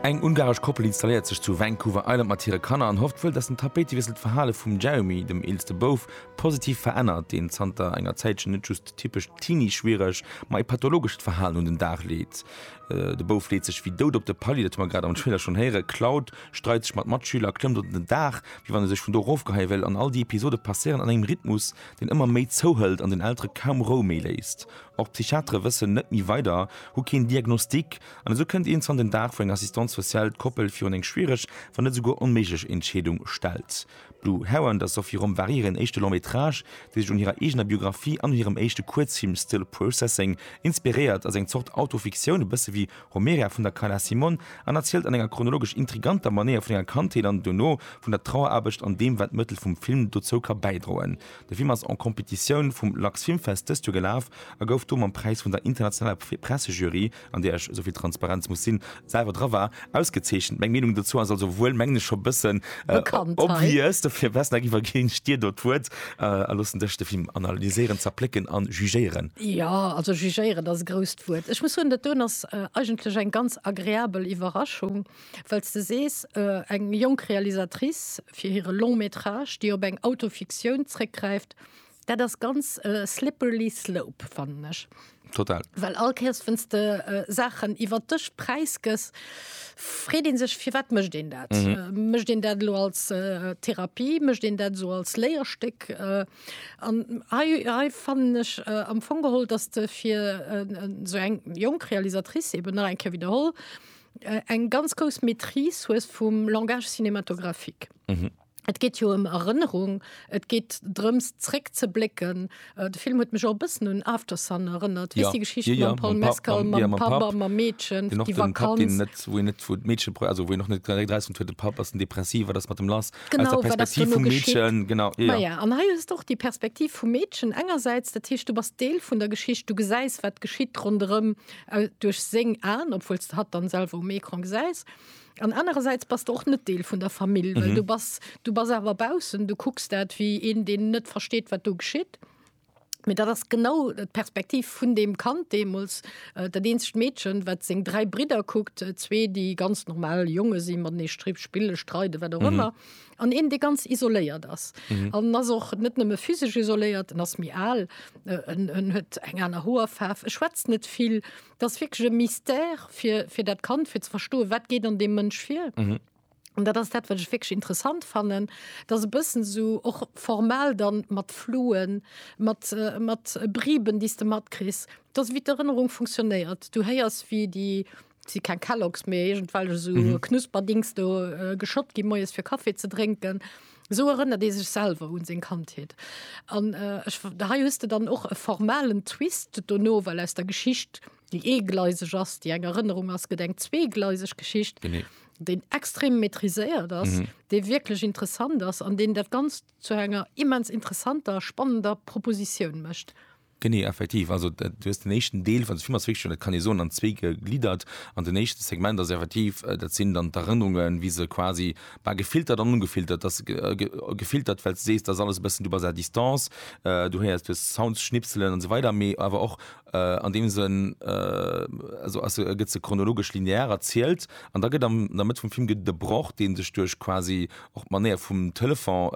Eng ungaresch Koppel installéiert sech zu Vancouver Island mat hire Kanner an hofft wuel, datt den Tapéitewiessel d'Verhale vum Jeremy, dem eelste Bouf, positiv verännert, deen zanter enger Zäitchen net just typescht Teenie-schwiereg, ma e pathologescht Verhalen un den Dag leet. De Bouf leet sech wéi dout op de Palier, dat hu mer grad am Trailer schonn héieren. D'Cloud streit sech mat Matschüler, klëmmt op den Daach, wéi wann e sech vun do erofgeheie wéilt. An all déi Episode passéieren an engem Rhythmus, deen ëmmer méi zouhëlt an den Eltere kaum Rou méi léisst. Och d'Psychiatere wëssen net méi weider, hu keen Diagnostic an esou kënnt iergendwann den Dag, wou eng Assistante sociale d'Koppel virun eng schwiereg, wann net esouguer onméiglech Entscheedung stellt. D'Lou Hau an der Sophie Romp war hiren éischte Long métrage, dee sech un hirer eegener Biographie an un hirem éischte Kuerzfilm Still Processing inspiréiert. Ass eng Zort Autofiktioun, e bësse wéi Homeria vun der Carla Simon, an erzielt an enger chronologesch intriganter Manéier vun enger Kandheet an dono vun der Traueraarbecht an deem, wat d'Mëttel vum Film dozou ka bäidroen. De Film ass en Competitioun vum Lux Filmfest dëst Joer gelaf a gouf do mam Präis vun der internationaler Pressejury an där ech, esou vill Transparenz muss sinn, selwer dra war, ausgezeechent. Meng Meenung dozou ass also wuel, mengen ech, scho e bëssen obvious. Dofir, Westnhack, iwwerginn ech dir do d'Wuert a loossen dech de Film analyséieren, zerplécken an jugéieren. Jo, also jugéieren ass e grousst Wuert. Ech muss soen, dat doen ass eigentlech eng ganz agreabel Iwwerraschung, well s de sees, eng jonk Realisatrice fir hire Long-métrage, déi op eng Autofiktioun zréckgräift, Dat ass ganz äh, slippery slope fannen ech. Total. Well all Käers wënns de äh, Saachen iwwer dech preisgëss, freet een sech fir wat mëscht een dat? Mhm. Äh, mëscht een dat lo als äh, Therapie, mëscht een dat so als Léierstéck? Äh, an hei, hei fannen ech äh, am Fong geholl, dass de fir äh, so eng jonk Realisatrice eben nach eng Kéier wiederholl, äh, eng ganz grouss Maîtrise hues vum Langage cinématographique. Mhm. Et geet jo ëm Erënnerung, et geet drëms zréckzeblécken. De Film huet mech och e bëssen un Aftersun erënnert. Weess déi Geschicht mam Paul Mescal, mam Papp a mam Meedchen, déi Vakanz. Wou een net, wou d'Meedche, also wou een och net direkt erausfënnt, huet de Papp, ass en depressiv, wat ass mat em lass? Aus der Perspektiv vum Meedchen, genau, jo. Majo, an hei hues de och déi Perspektiv vum Meedchen engersäits, dat heescht du bass Deel vun der Geschicht, du gesäis wat geschitt ronderëm duerch seng Aen, obwuel s de hatt dann selwer um Ecran gesäis. An anerersäits bass de och net Deel vun der Famill, well du bass, du bass awer baussen, du kucks dat wéi een, deen net versteet, wat do geschitt. Mee dat ass genau d'Perspektiv vun deem Kand deemools, dat eenzegt Meedchen, wat seng dräi Bridder kuckt, zwee, déi ganz normal Jonge si, matenee stri spille, streide, wat och ëmmer, an een, dee ganz isoléiert ass. En ass och net nëmme physesch isoléiert, en ass méi al, en huet eng aner Hoerfaarf, e schwätzt net vill, Dat ass wierklech e Mystère fir, fir dat Kand, fir ze verstoen, wat geet an deem Mënsch vir. Mhm. An dat ass dat, wat ech wierklech interessant fannen, dass e bëssen esou och formal dann mat Fluen, mat, mat Briben, déi s de matkriss, dass wéi d'Erënnerung funktionéiert. Du héiers, wéi déi, et si keng Kellogs, mee iergendwelch esou Knusperdings do geschott gi moies, fir Kaffi ze drénken. Esou erënnert ee sech selwer un seng Kandheet. An hei hues de dann och e formalen Twist dono, well aus der Geschicht, déi eegleiseg ass, déi eng Erënnerung ass, gëtt eng zweegleiseg Geschicht, déi extrem maîtriséiert ass, déi wierklech interessant ass an deen dat Ganzt zu enger immens interessanter, spannender Propositioun mécht. Genee, effektiv. Also du hues den éischten Deel, also d'Film ass wierklech, dat kann ee soen, an zwee gegliddert. An den éischte Segment ass effektiv, dat sinn dann d'Erënnerungen, wéi se quasi, bah, gefiltert an ongefiltert, dass se gefiltert, well s de sees, dass alles e bëssen, du bass à distance, du héiers, du hues Sounds, Schnipselen an esou weider, mee awer och an deem Sënn, also ass se, gëtt se chronologesch linear erzielt. An da gëtt an der Mëtt vum Film gëtt et e Broch, dee sech duerch quasi Och d'Manéier vum Telefon,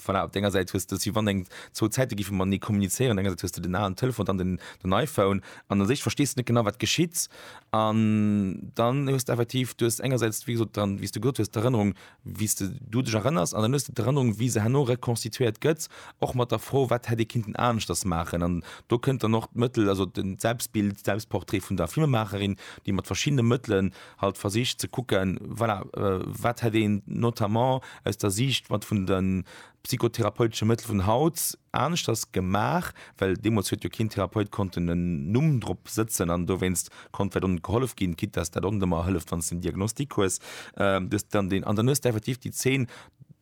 voilà, op denger Säit hues de si wann eng zwou Zäite gife matenee kommunizéieren. Op denger Säit hues de den alen Telefon, dann den den iPhone an u sech verstees de net genau wat geschitt. An dann hues de effektiv, du hues engersäits wéi gesot dann, wéi s de gesot hues, d'Erënnerung wéi s de du dech erënners an dann hues de d'Erënnerung wéi se herno rekonstituéiert gëtt, och mat der Fro wat hätt ee kinnten aneschters maachen. An do kënnt dann och d'Mëttel, also den d'Selbstbild, d'Selbstportrait vun der Filmemacherin, déi mat verschiddene Mëttelen halt versicht ze kucken, voilà, wat hätt een notamment aus der Siicht mat vun de psychotherapeutesche Mëttel vun haut aneschters gemaach, well deemools huet jo keen Therapeut konnten en Numm drop sëtzen an dowéinst konnt vläicht och net gehollef ginn, quitte dass dat och net ëmmer hëlleft, wann s de en Diagnostic hues. Du hues dann deen, an dann hues de effektiv déi Zeen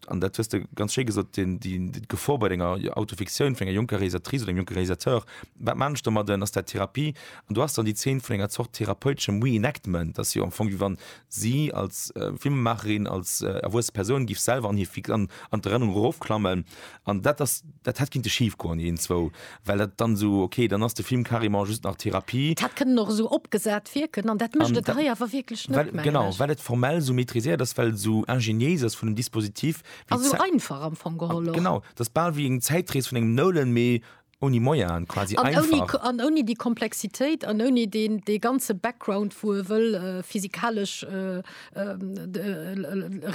an dat hues de ganz schéi gesot, d'Gefor bei denger Autofiktioun vun enger jonker Realisatrice oder engem jonke Realisateur, wat man ech domadden, ass dat Therapie? An do ass dann déi Zeen vun enger Zort therapeuteschem Reenactment, dass jo am Fong, wéi wann si als Filmemaacherin, als erwuesse Persoun, géif selwer an hir an d'Erënnerung erofklammen An dat ass, dat hätt kinnte schif goen, déi een zwou, well dat dann esou, okay, dann ass de Film carrément just nach Therapie. Dat hätt kënnen och esou opgesat wierken an dat mécht et hei awer wierklech net, mengen ech. Genau, well et formell esou maitriséiert ass, well et esou ingéniéis ass vun dem Dispositif. A sou einfach am Fong geholl och. Genau, et ass bal wéi eng Zäitrees vun engem Nolan, mee Ouni Moyaen quasi an einfach. Ouni, an ouni déi Komplexitéit an ouni deen, dee ganze Background, wou e wëll äh, physikalesch äh, äh,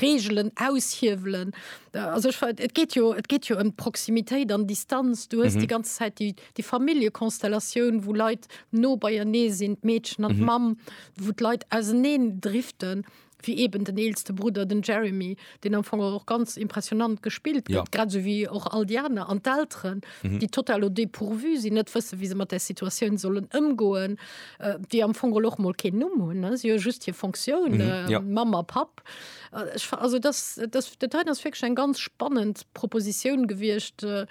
Reegelen aushiewelen. Äh, also ich, et geet jo, et geet jo ëm um Proximitéit an Distanz. Du hues mhm. die ganze Zeit die, die Familienkonstellation, wo Leit no beienee sinn, d'Meedchen an mhm. d'Mamm, wo d'Leit auseneen driften. wéi eben den eelste Brudder, den Jeremy, deen am Fong och ganz impressionant gespillt gëtt, ja. grad sou wéi och all déi aner, an d'Elteren, mhm. déi total au dépourvu sinn, net wësse wéi se mat der Situatioun sollen ëmgoen, äh, déi am Fong och mol keen Numm hunn, si jo just hir Fonctioun mhm. äh, ja. Mammer Papp. Äh, also das, das, das, das ass wirklich eng ganz spannend Proposition gewiescht. Äh,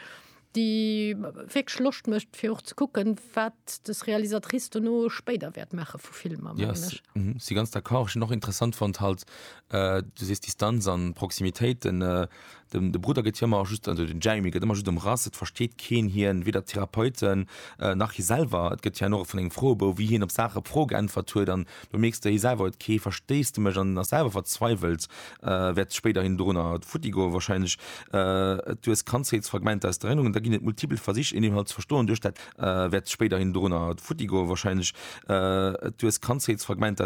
déi wierklech Loscht mécht fir och ze kucken, wat des Realisatrice dono spéider wäert maache vu Filmer, mengen ech. Ja, mhm, si ganz d'accord. Ech hunn och interessant fonnt halt, du sees Distanz a Proximitéit, den, de Brudder gëtt jo ëmmer just, also den Jeremy gëtt ëmmer just ëmrass, et versteet keen hien, weder d'Therapeuten nach hie selwer. Et gëtt hien och vun engem Froebou, wéi hien op Saache Froe geäntwert huet an Do mierks de eh selwer, huet kee Verstéissdemech an ass selwer verzweiwelt, wäert spéiderhin dorunner futtigoen wahrscheinlech. Et hues Kandheetsfragmenter aus der Erinnerung, da ginn et multipel Versich, een inhalt ze verstoen duerch dat wäert spéiderhin dorunner futtigoen wahrscheinlech. Et hues Kandheetsfragmenter aus.